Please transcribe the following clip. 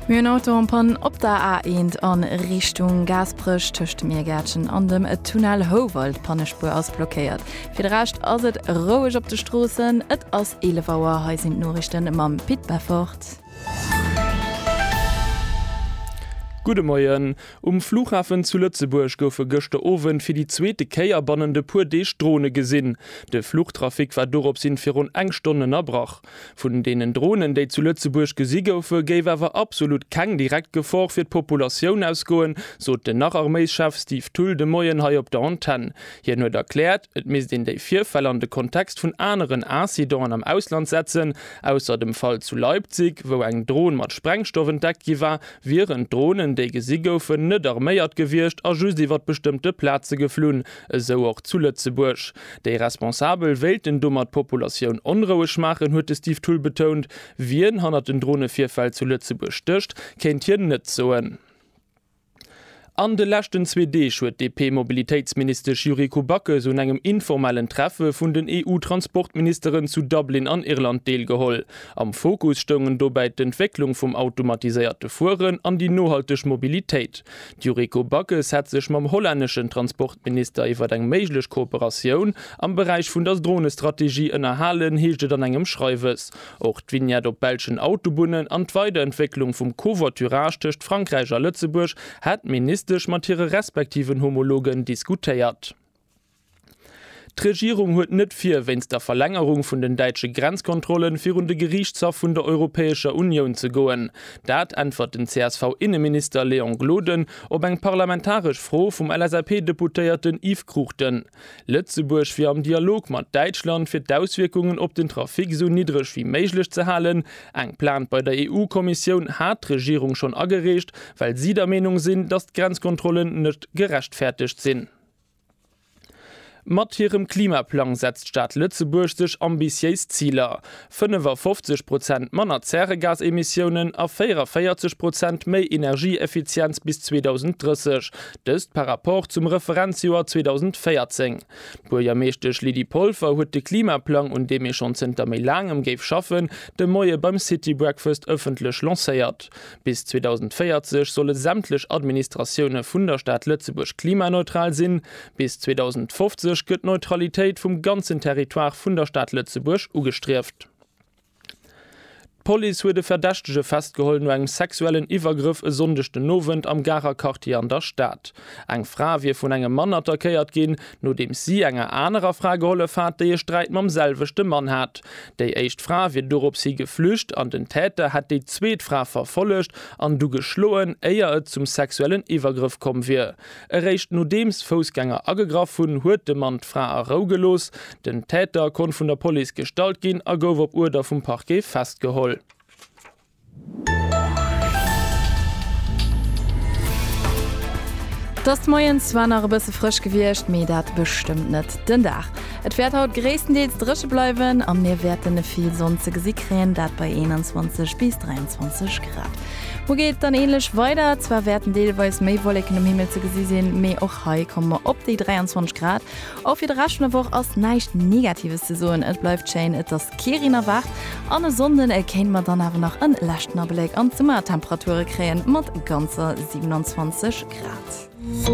Mir hunn Auto en panne op der A1 a Richtung Gaasperech. Tëscht dem Iergäertchen an dem Tunnel Houwald. D'Pannespuer ass blockéiert. Fir de Rescht ass et roueg op de Stroossen. Et ass 11 Auer. Hei sinn d'Noriichte mam Pit Beffort. Gudde Moien. Um Flughafen zu Lëtzebuerg goufe gëschter Owend fir déi zweete Kéier bannent e puer Deeg Drone gesinn. De Fluchtrafic war dorops hin virun eng Stonn ënnerbrach. Vun deenen Dronen, déi zu Lëtzebuerg gesi goufen, géif awer absolut keng direkt Gefor fir d'Populatioun ausgoen, sot den Nach-Arméischef Steve Thull de Moien hei op der Antenn. Hien huet erkläert, et misst een déi Virfäll an de Kontext vun aneren Incidenten am Ausland setzen. Ausser dem Fall zu Leipzig, wou eng Dron mat Sprengstoff entdeckt gi war, wieren d'Dronen, déi gesi goufen, net arméiert gewiescht a just iwwer bestëmmte Plaze geflunn, esou och zu Lëtzebuerg. Déi Responsabel wéilten domat d'Populatioun onroueg maachen, huet de Steve Thull betount. Wien hannert den Dronevirfäll zu Lëtzebuerg stécht, kéint hien net soen. An de leschten zwee Deeg huet d'DP-Mobilitéitsministesch Yuriko Backes un engem informellen Treffe vun den EU-Transportministeren zu Dublin an Irland deelgeholl. Am Fokus stoungen dobäi d'Entwécklung vum automatiséierte Fueren an déi nohalteg Mobilitéit. D'Yuriko Backes hätt sech mam hollänneschen Transportminister iwwer eng méiglech Kooperatioun am Beräich vun der Dronestrategie ënnerhalen, heescht et an engem Schreiwes. Och d'Vignette op belschen Autobunnen an d'Weiderentwécklung vum Covoiturage tëscht Frankräich a Lëtzebuerg hätt d'Ministesch mat hire respektiven Homologen diskutéiert. D'Regierung huet net vir, wéinst der Verlängerung vun den däitsche Grenzkontrollen, virun de Geriichtshaff vun der Europäescher Unioun ze goen. Dat äntwert den CSV-Inneminister Léon Gloden op eng parlamentaresch Fro vum LSAP-Deputéierten Yves Cruchten. Lëtzebuerg wier am Dialog mat Däitschland, fir d'Auswierkungen op den Trafic esou niddreg wéi méiglech ze halen. Eng Plainte bei der EU-Kommissioun hat d'Regierung schonn agereecht, well si der Meenung sinn, datt d'Grenzkontrollen net gerechtfäertegt sinn. Mat hirem Klimaplang setzt d'Stad Lëtzebuerg sech ambitiéis Ziler, 55 Prozent manner Zäregasemissiounen a 44 Prozent méi Energieeffizienz bis 2030, dëst par Rapport zum Referenzjoer 2014. D'Buergermeeschtesch Lydie Polfer huet de Klimaplang, un deem ee schonn zënter méi laangem géif schaffen, de Moie beim City Breakfast ëffentlech lancéiert. Bis 2040 solle sämtlech Administratioune vun der Stad Lëtzebuerg klimaneutral sinn. Bis 2050 gëtt d'Neutralitéit vum ganzen Territoire vun der Stad Lëtzebuerg ugestrieft. D'Police huet e Verdächtege festgeholl no engem sexuellen Iwwergrëff e Sonndeg den Owend am Garer Quartier an der Stad. Eng Fra wier vun engem Mann attackéiert ginn, nodeems si enger anerer Fra gehollef hat, déi e Sträit mam selwechte Mann hat. Déi éischt Fra wier dorops hi geflücht an den Täter hätt déi zweet Fra verfollegt an du geschloen, éier et zum sexuellen Iwwergrëff komm wier. Eréischt nodeems Foussgänger agegraff hunn, huet de Mann d'Fra a Rou gelooss. Den Täter konnt vun der Police gestallt ginn a gouf op Uerder vum Parquet festgeholl. 't ass moies zwar nach e bësse frësch gewiescht, mee dat bestëmmt net den Dag. Et wäert haut gréisstendeels dréche bleiwen a mir wäerte vill Sonn ze gesi kréien, dat bei 21 bis 23 Grad. Muer geet et dann änlech weider, zwar wäerten deelweis méi Wolleken um Himmel ze gesi sinn, mee och hei komme mer op déi 23 Grad. Och fir de Rescht vun der Woch ass näischt Negatives ze soen, et bleift schéin. Et ass. Quirin erwaart an e Sonnden kéinte mer dann awer nach e leschten Abléck an d'Summertemperature kréien, mat ganzer 27 Grad.